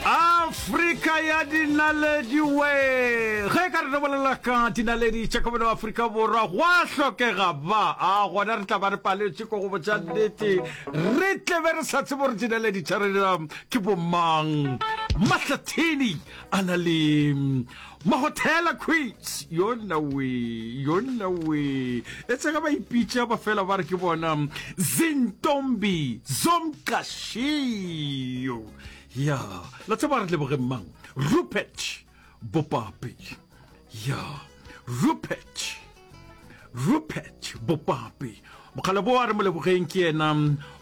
afrika ya dinaledi we ge ka re re bolela ka dinaledi tša kabelo afrika borwa gwa hlokega ba a gona re tla ba re paletše ko go botša nnete re tlebe re sa tsebo gore dinaledi tša rena ke bomang mahlathini a na le Mahothela quits yona wee yona wee etsa ge ba ipitša ba fela ba re ke bona Zintombi Zomqashiyo ya la tseba re leboge mang Rupert Bopapi ya Rupert rupert bopapi bokgale bo a re molebogeng ke yena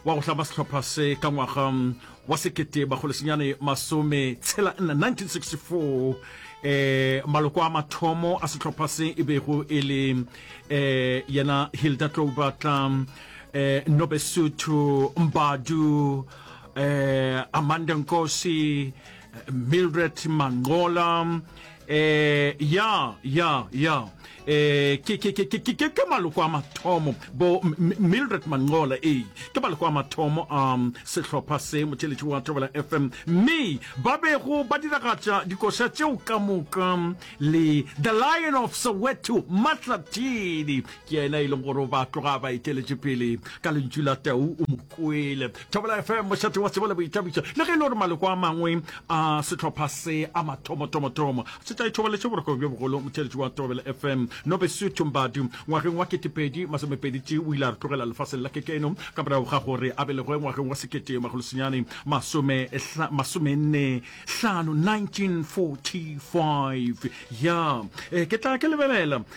wa go hlama sehlopha se ka ngwaga wa sekete bakgolesenyane masome tshela nna 1964 eh maloko a mathomo a sehlopha se e bego e le eh yena hilda tlobatla eh nobesuthu mbadu eh amanda nkosi mildred mangola Eh, ya ya ya eh, ke, ke, ke, ke, ke, ke maloko a mathomo bo mildred mangola ee ke maloko a mathomo a um, sehlopha se motšheletši wa thobela fm mme ba bego ba diragatša dikoša tšeo ka moka le the lion of soweto matlatini ke yena e leng gore o ba tloga ba eteletše pele ka lentšu la tau o mo kwele thobela fm mošate wa tsebo le boithabišo le ge e le gore maloko a mangwe a sehlopha se a mathomotomotomo se tla ithobaletše boroko bjo bogolo motheletši wa thobela fm nobesu tumbadu ngwageng wa ketepedi masomepeditši o ile a re tlogela lefaseng la kekeno ka morago ga gore a belegoe ngwageng wa sekete magolosenyane masomenne hlano 1945 ya eh, ke tla ke lebelela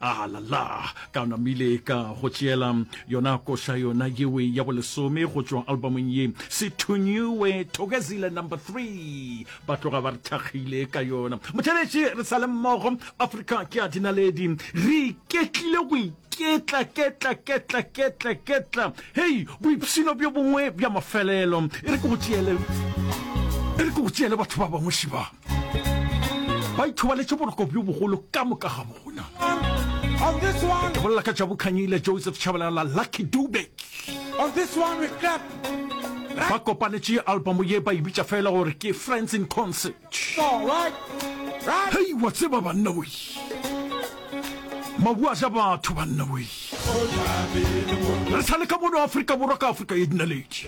A la la! Ka namile ka go tšeela yona koša yona yewe ya bolesome go tšwa albumong ye, Se Thunyiwe, Thokozile Number Three. Ba tloga ba re thakgile ka yona. Motšheletše, re sa le mmogo. Afrika ke ya dinaledi. Re iketlile go iketla, ketla, ketla, ketla, ketla. Hei, boipshino bjo bongwe bja mafelelo. E re ke go tšeele, e re ke go tšeele batho ba bangwe šiba. ba ithobaletše boroko bjo bogolo ka moka ga bona ke bolela ka jabu khanyile joseph chabalela lucky dube ba kopanetše album ye ba e bitša fela gore ke friends in concert hei wa tseba banna wei mabu a ja batho banna wei re sa le ka mono afrika borwa ka afrika ye dinaledi